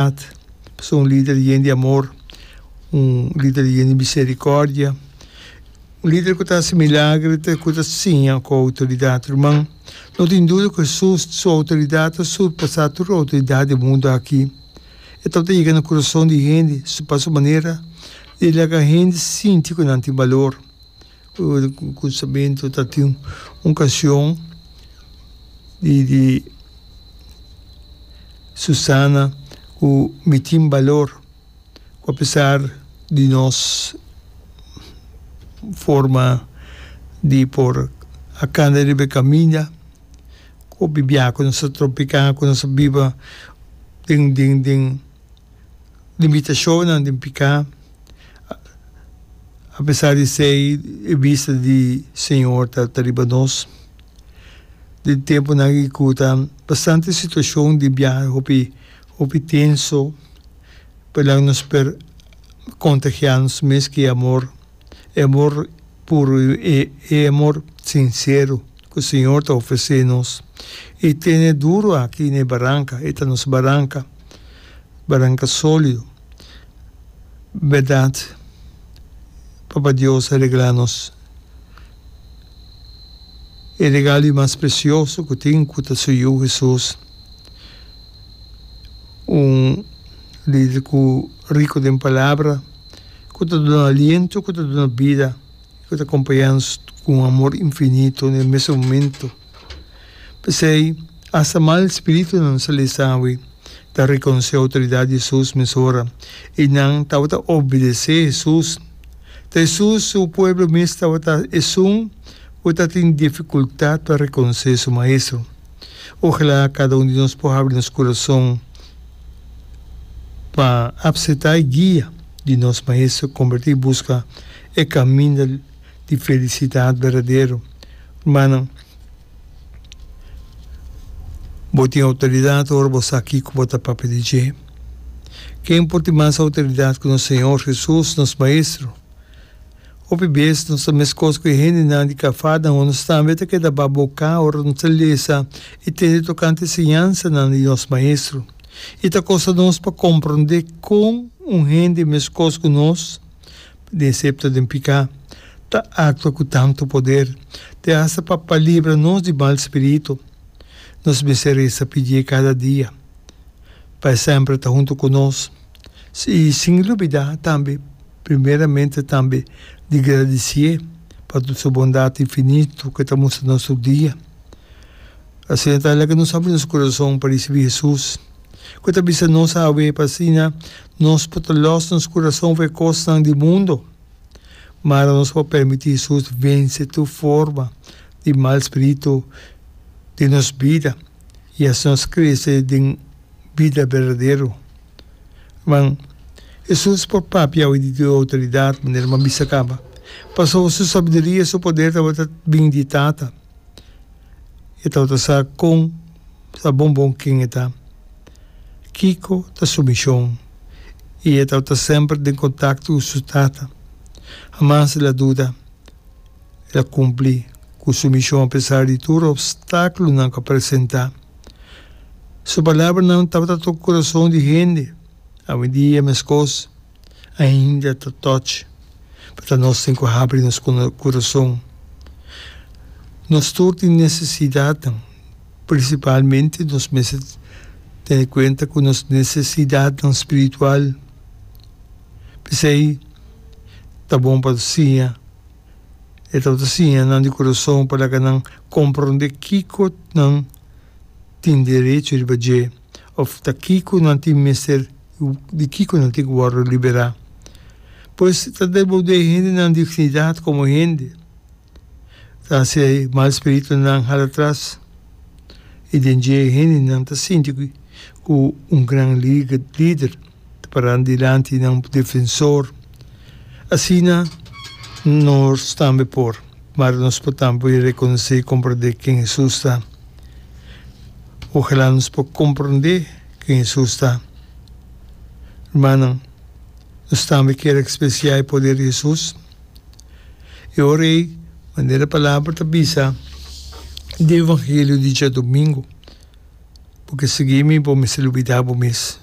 At pasa un lider yen di amor, un lider yen di miserikòrdia, un lider ku ta hasi milagernan, ku ta siña ku outoridat. Ruman, no tin duda ku Hesus su outoridat ta surpasá tur outoridat di e mundu aki. E tabata yega na kurason di hende pa su manera di laga hende sinti ku nan tin balor. Kusabentu ta tin un kashon di di Susana ku mi tin balor ku apesar di nos forma di por a kanda riba e kaminda ku bibia ku nos ta tropiká ku nos ta biba den den den limitashonnan den piká A pesar di esei, e bista di Señor ta ta riba nos. Den e tempunan ei ku ta bastante situashon di biaha hopi hopi tenso, por e lado nos por kontagiá nos mes ku e amor, e amor puru, e e amor sinsero ku Señor ta ofresé nos. E tene duru aki na e baranka, e ta nos baranka, baranka sólido. Berdad, Papa Dios a regla nos e regalo di mas precioso cu tin, cu ta su Yu Jesus, un lider cu rico den palabra, cu ta duna aliento, cu ta duna bida ku ta kompañanan ku un amor infinito na e mes momento. P'esei, asta mal spiritunan salí sabi ta rekonosé outoridat di Hesus mesora i nan tabata obedesé Hesus. Ta Hesus su pueblo mes tabata esun ku tatin difikultat pa rekonosé su Maestro. Ojalá kada un di nos por habri nos kurason pa apseptá e guia di nos Maestro, kombertí i buska e caminda di felicidad berdadero. Rumannan, bo tin autoridad ora bo sa kico bo ta papia di dje. Ken por tin mas autoridad cu nos Señor Jesus, nos Maestro? Hopi bes nos ta mescos cu e hendenan di cafada, ma nos tambe ta keda baboca ora nos ta lesa y tende tocante enseñansanan di nos Maestro. I ta costa nos pa compronde con un hende mescos cu nos. Di e septa den piká, ta aktua ku tantu poder te asta pa pa libra nos di mal spiritu. Nos mester resa pi dje kada dia, pa e sèmper ta huntu ku nos, i sin lubidá tambe primeramente tambe di gradisié pa tur su bondat infinitu ku e ta mustra nos tur dia. Asina ta laga nos abri nos kurason pa risibí Hesus, ku ta bisa nos awe pa asina Nos por ta lòs nos kurason for e kosnan di mundu, mara nos por permití Hesus vense tur forma di mal spiritu den nos bida i hasi nos krese den bida berdadero. Ruman, Hesus por papia awe di su outoridat, manera bo a bisa kaba, pasobra su sabiduria i su poder tabata bini di Tata. E tabata sa kon. ta bon bon ken e ta. Kiko ta su mishon i e tabata semper den kontakto ku su tata. Hamas el a duda. El a kumpli ku su mishon apesar di tur opstákulonan ku a presentá. Su palabranan tabata toko kurason di hende. Awendia meskos. ainda ta toch pa ta nos tin cu habri nos curason. Nos tur tin necesidadnan, principalmente nos mester tene cuenta cu nos necesidadnan spiritual. P'esey ta bon pa nos siña e tabata siña nan di curason pa laga nan comprende kico nan tin derecho riba dje. of ta kiko nan tin mester di kiko nan tin ku wòrdu liberá. Pues ta devolbé e hendenan dignidat komo hende, ta hasi e mal spiritunan hala atras i den dje e hendenan ta sinti ku un gran lider. ta paran dilanti nan defensor. Asina nos tambe por. Mara nos por tambe rekonosé komprondé ken Hesus ta. Ojalá nos por komprondé ken Hesus ta. Rumannan, nos tambe ker ekspresiá e poder di Hesus. E ora ei, manera Palabra ta bisa den e Evangelio di djadumingu, Bo ke sigui mi, bo mester lubidá bo mes.